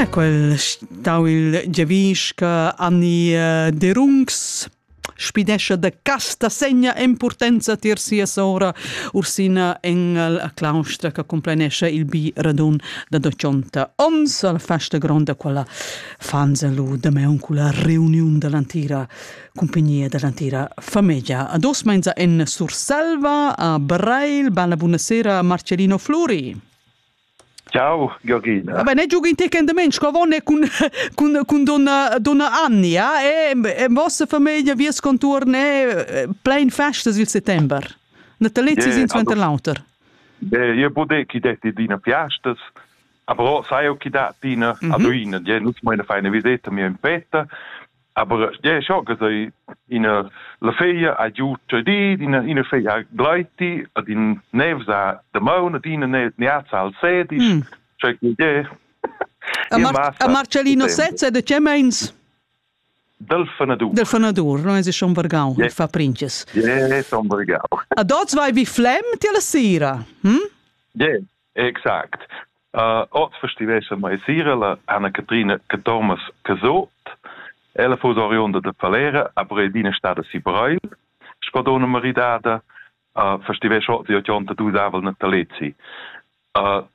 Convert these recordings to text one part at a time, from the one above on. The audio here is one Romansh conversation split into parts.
Ah, quel stau il giavisca Anni eh, Derungs spidescha da casta segna importanza tier sia sora Ursina Engel a claustra che complenesce il bi radun da 200 ons alla festa gronda quella fanzalu da me la reunion dell'antira compagnia dell'antira famiglia a dos menza en Surselva a Brail bella buonasera Marcellino Flori Ciao Georgina. Vabbè, ne giochi in te endament, sco vonne cun cun cun donna donna Annia e e vossa famiglia vies conturn è plein festas il settember. Natalizis in suenter l'auter. Io pote chi detti d'ina fiastas. Aber sai auch, da tina mhm. ad una, nus meine feine visetta mia in fetta Aber ja scho che sei ina la feglia ha giu tradit ina ina feglia ha gleiti ad in nevza de maun ad ina neazza al sedi mm. che je a Marcellino Sezza de che meins Del Fenadur. Del Fenadur, non es schon vergau, yeah. il fa princes. Yeah, son vergau. A dots vai vi flem ti la sera, hm? Yeah. Exact. Uh, oz festivescha mai sira la Anna Catrina Catormas Casot. Ella fu oriunda de Falera, a Bredina stada si Breil, scodona maridada, uh, festivescha oz di 82 aval Natalezi. Uh,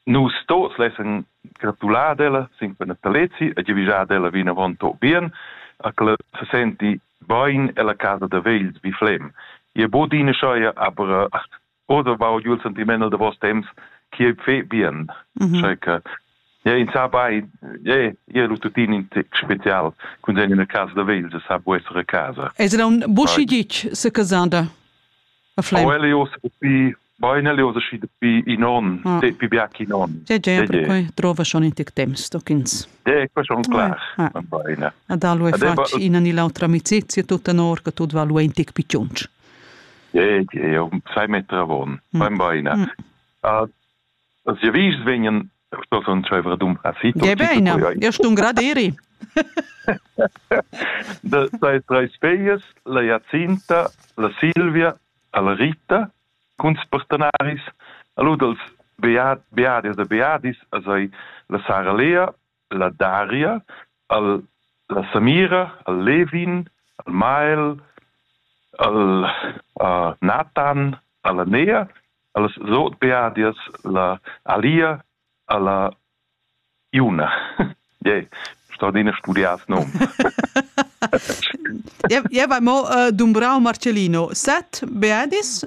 nus tos lessen gratulat ella sin per Natalezi e givigiat ella vin avon to bien, a che se senti bein ella casa de vegl vi flem. Ie bodine scheia aber oder war jul sind die Männer de vos temps chi fe bien mhm. checa ja in sa bei je ihr lututin in tic spezial kun sein in casa da Wales sa bu essere casa Es era un buschi dic se casanda a flem Elios bi Bei Elios si bi in on ah. te pi biac in on Ja ja perquei trova schon in tic temps stockins De qua schon klar ah. Ad allo è fatg ina ni l'autra amicizia tutta in orca tot va lu in tic picciunch E eu sai metter avon, fain baina. As ja vis vegnan sto son tscheiver dumbra si. Ja beina, ja stun graderi. Da sai treis feias, la Jacinta, la Silvia, la Rita, cuns partenaris, a lu dels Beat, Beadias e Beadis, a sai la Sara Lea, la Daria, al, la Samira, al Levin, al Mael, al uh, Nathan, alla Nea, allas Sotbeadias, la Alia, alla Iuna. yeah, straordine studias nom. ja, ja, bei mo uh, Dumbrau Marcellino, set Beadis